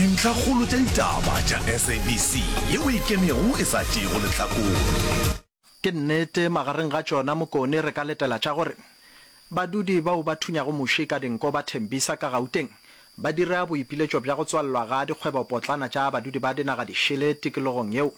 Dintlhakgolo tša ditaba tša SABC ye o e kemego e sa tšeego lehlakore. Ke nnete, magareng ga tšona Mokone re ka letela tša gore badudi bao ba thunyago muši ka dinko ba Tembisa ka Gauteng ba dira boipiletšo bja go tswalelwa ga dikgwebopotlana tša badudi ba dinagadišele tikologong yeo.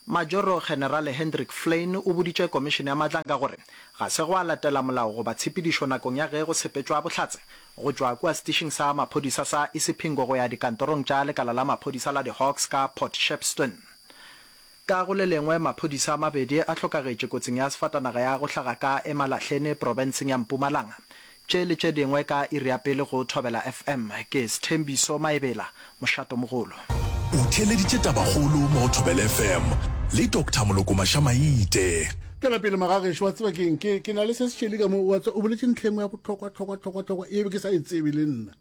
Majoro Generale Hendrik Flyn o boditše Komišene ya Matlanka gore ga se gwa latela molao goba tshepedišo nakong ya ge go sepetšwa bohlatse go tšwa kua setišing sa maphodisa sa Isipingo go ya dikantorong tša lekala la maphodisa la di-Hawks ka Port Shepstone. Ka go le lengwe, maphodisa a mabedi a hlokagetše kotsing ya sefatanaga ya go hlaga ka Emalahleni, profenseng ya Mpumalanga. Tše le tše dingwe ka iri ya pele go Thobela FM. Ke Sthembiso Maebela, mošatomogolo. O theeleditše tabakgolo mo go Thobela FM le Doctor Moloko Maša-Maite. Tšwela pele magagešo, wa tseba keng, ke, ke na le se setšeli ka mo, wa tseba, o boletše ntlha engwe ya bohlokwa-hlokwa-hlokwa-hlokwa e be ke sa e tsebe le nna,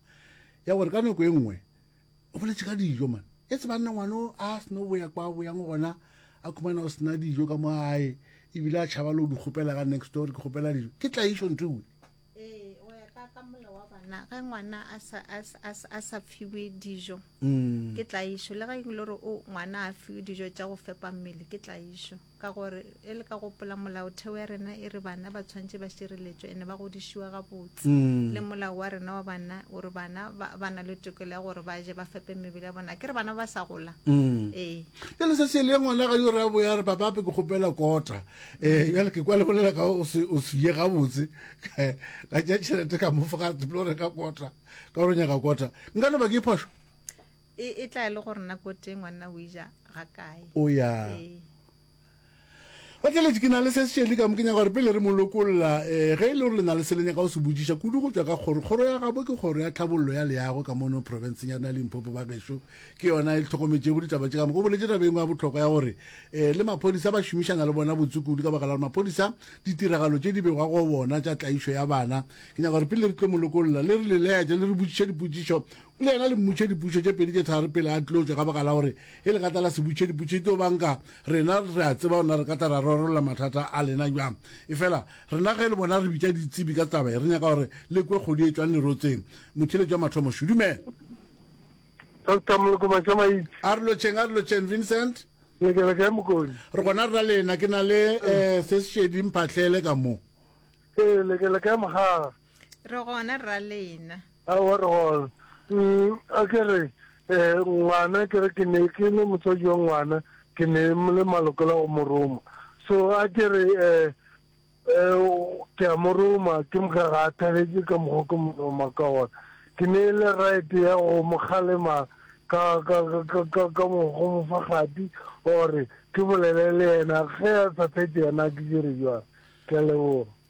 ya gore ka nako e nngwe, o boletše ka dijo man e tse banna ngwana o a seno boya kwa boyang gona a khumana o sena dijo ka mo gae ebile a tšhaba le o di kgopela ka next door ke kgopela dijo ke tlaišo ntho ewe bana ge ngwana a sa fiwe dijo mm. ke tlaišo le ga e le gore ngwana a fiwe dijo tša go fepa mmele ke tlaišo Ka gore, e le ka gopola, Molaotheo ya rena e re bana ba tshwanetše ba šireletšwe ene ba godišiwa gabotse. Le molao wa rena wa banna o re bana ba, ba na le tokelo ya gore ba je, ba fepe mebele ya bona. Akere bana ba ba sa gola? Ee. Bjale se se le ngwana ga yo re a boya re, Papape, ke kgopela kota. Ee, bjale ke kwa le bolela ka o se, o se ye gabotse. Ka tšea tšhelete ka mo fa, ga a tlo reka kota, ka gore o nyaka kota. Nka no ba ke phošo? E, e tla e le gore nna ko teng ngwanna o ija ga kae. O ya. Ee. Bakeletši, ke na le se sešedi ka mo ke nyaka gore pele re mo lokolla, eh, ge e le gore le na le se le nyaka go se botšiša kudu go tšwa ka kgoro, kgoro ya gabo ke Kgoro ya Tlhabollo ya Leago ka mono profenseng ya rena ya Limpopo, ba gešo. Ke yona e le hlokometšego ditaba tše ka moka. O boletše taba e nngwe ya bohlokwa ya gore, eh, le maphodisa ba šomišana le bona botse kudu ka baka la gore maphodisa ditiragalo tše di begwa go bona tša tlaišo ya bana. Ke nyaka gore pele re tlo mo lokolla, le re le laetše le re botšiše dipotšišo Le yena le mmotše dipušo tše pedi tše tharo pele a tlotšwa ka baka la gore e le gata la se butše diputše di tlo banka. Rena re a tseba ona re kata ra rorolla mathata a lena bjang. Efela rena ge le bona re bitša ditsebi ka taba e, re nyaka gore le kwe kgodu e tšwang lerotseng. Motheeletši wa mathomo, Shu, dumela. Doctor Molokoma Tšamaitse. A re lotšheng, a re lotšheng, Vincent. Le ke le kae Mokone? Re gona rra lena, ke na le eh, se sešedi mphahlele ka mo. Ee, le ke le kae Mogaga? Re gona rra lena. Aowa re gona. Um, a ke re, eh, ngwana, ke re ke ne ke le motswadi yo ngwana, ke ne le maloko la go mo roma. So a ke re, eh, eh, ke a mo roma, ke mokga ga a thabetše ka mokgwa ke mo roma ka gona. Ke ne le right ya go mo kgalema ka, ka, ka, ka, ka mo, go mo fa kgati, gore ke bolele le yena, ge a sa fetše yena a ke dire bjang. Ke a leboga.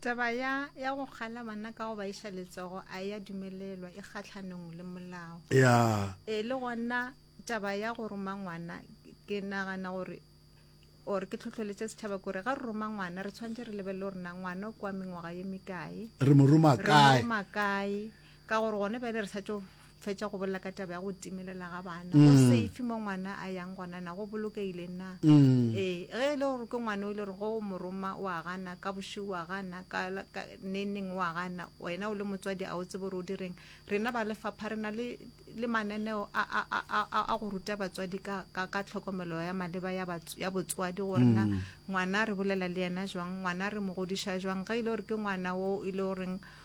Taba ya ya go kgala bana ka go ba iša letsogo a e ya dumelelwa, e kgatlhanong le molao. Ya. E le gona taba ya go roma ngwana ke nagana gore or ke tlhotlheletše setšhaba kore ga re roma ngwana re tshwanetse re lebelele gore na ngwana o kwa mengwaga ye mekae, re mo roma re mo kae roma kae ka gore gone bjale re sa tšo fetša go bolela ka taba ya go timelela ga bana go mm. safe mo ngwana a yang gona na go bolokegile na mm. ee ge e le gore ke ngwana o ile gore go moroma o a gana ka bošego o a gana ka neneng o a gana wena o le motswadi a o tsebo gore o direng rena ba lefapha re na le mananeo a go ruta batswadi ka tlhokomelo ya maleba ya botswadi gore na mm. ngwana re bolela le yena jwang ngwana re mo godiša jwang ge e le gore ke ngwana o e le goreng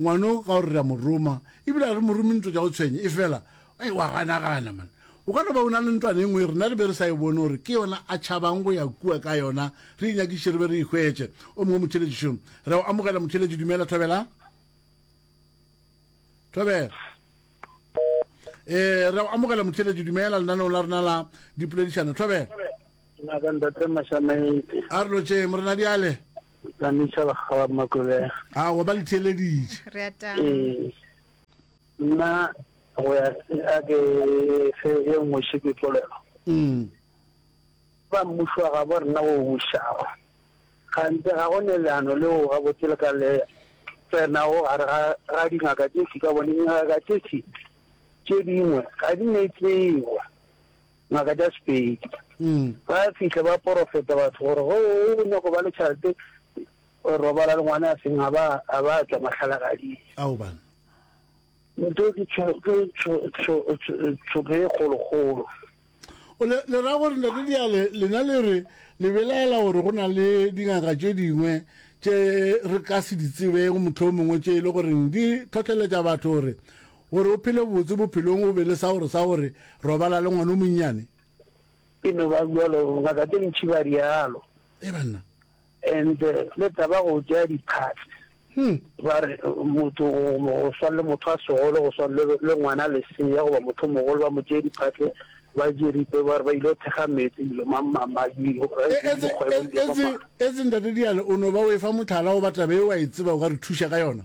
Ngwano ka gore re a mo roma, e bile ga re mo rome ntwa tša go tshwenya. Efela, ee, wa ganagana, man. O ka no ba o na le ntwana e nngwe ye rena re be re sa e bone gore ke yona a tšhabang go ya kua ka yona, re e nyakiše re be re e hwetše. O mongwe motheeletši, šo, re a o amogela, motheeletši. Dumela, thobela. Thobela. Ee, re a o amogela, motheeletši. Dumela lenaneong la rena la dipoledišano. Thobela. A re lotšeng, Morena, bjale. Ka neša lekgala makolela. A wa ba le theeleditše. Re a tama. Ee. Nna go ya a ke fe e nngwe še ke polelo. Mm. Ba mmušo wa gabo rena o bušago. Gantse ga go ne leano leo gabotse le ka le tsena go gare ga ga dingaka tše tše ka bone dingaka tše tše tše dingwe ga di ne tsebo. ngaka tša Sepedi. Ba fihla ba porofeta batho gore go o nyako ba le tšhalete robala le ngwana a seng a ba a ba tla mahlalagading. Ao bana. Nto ke tsho ke tsho tsho tsho ke golo golo. O le le ra gore ntate diale lena le re le belaela gore go na le dingaka tše dingwe tše re ka se di tsebeng motlho mongwe tše e le goreng di tlhotlheletša batho gore Gore o phele botse bophelong o be le sa gore sa gore robala le ngwana o monnyane. E no ba bjalo, ngaka tše ntši ba realo. E banna. And le taba go tšea diphatse. Hmm. Ba re motho go swana le motho a segolo go swana le ngwana lesea goba motho mogolo ba mo tšee diphatse ba je ripe ba re ba ile go thekga metsi dilo mamamadielo. Etse ntate Diale o no ba o e fa motlhala goba taba e wa e tseba o ka re thuša ka yona?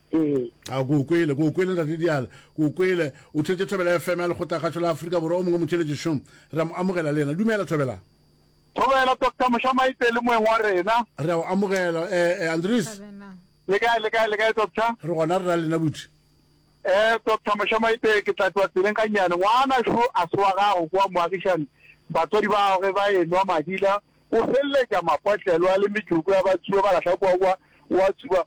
Ee. A ke o kwele, ke o kwele Ntate Diala, ke o kwele. O theetše Thobela FM ya Lekgothakgašo la Afrika Borwa, o mongwe motšheletši šo. Re a mo amogela le yena. Dumela, Thobelang. Thobela, Doctor Moshamaite le moeng wa rena. Re a o amogela. Eh, eh, Andries. Thabelang. Le kae, le kae, le kae, Doctor? Re gona re na lena buti. Eh, Doctor Moshamaite, ke tla tloa tseleng gannyane. Ngwana šo a se wa gago kwa moagišane. Batswadi ba gagwe ba enwa madila, o feleletša mapotlelo a le metšoko ya batsuba ba lahla kwa kwa, wa tsuba.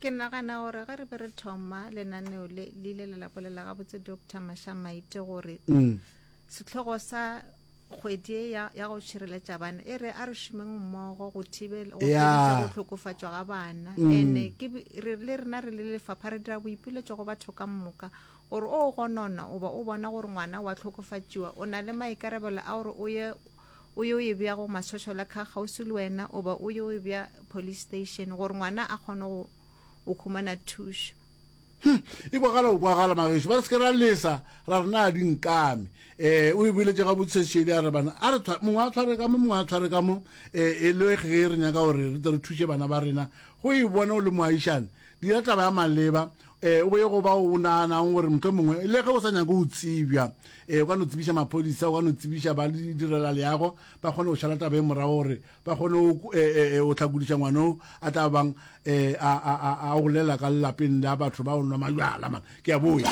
ke nagana gore ge re be re thoma lenaneo le ile la lapolela gabotse doctor mashamaite gore mm. setlhogo sa kgwedi ya ya go šireletša bana e re a re šomeng mmogo go thibela go go tlhokofatšwa ga bana mm. ene ke re le rena re le lefapha re dira boipiletšo go batho ka moka gore o gonona oba o bona gore ngwana wa tlhokofatšiwa o na le maikarebelo a gore o ye o yo e bja go masošola kha kgauswi le wena oba o yo e bja police station gore ngwana a kgone go o khumana thušo Hm, e kwagala go kwagala magešo ba re seke ra lesa ra re na di nkame um o e boletše ga botshesedi a re bana a re tshwa mongwe a tshware ka mo mongwe a tshware ka mo um e le ge re nyaka gore re tle re thuše bana ba rena go e bona o le moagišane dira taba ya maleba Ee, o be yo go bao o naganago gore mohlomongwe le ge o sa nyake go tsebja, ee, o ka no tsebiša maphodisa, o ka no tsebiša ba direla leago, ba kgone go šala taba e morago gore ba kgone go hlakodiša ngwana o a tla bang a golela ka lelapeng la batho ba o nwa majwala. Man, ke a boya.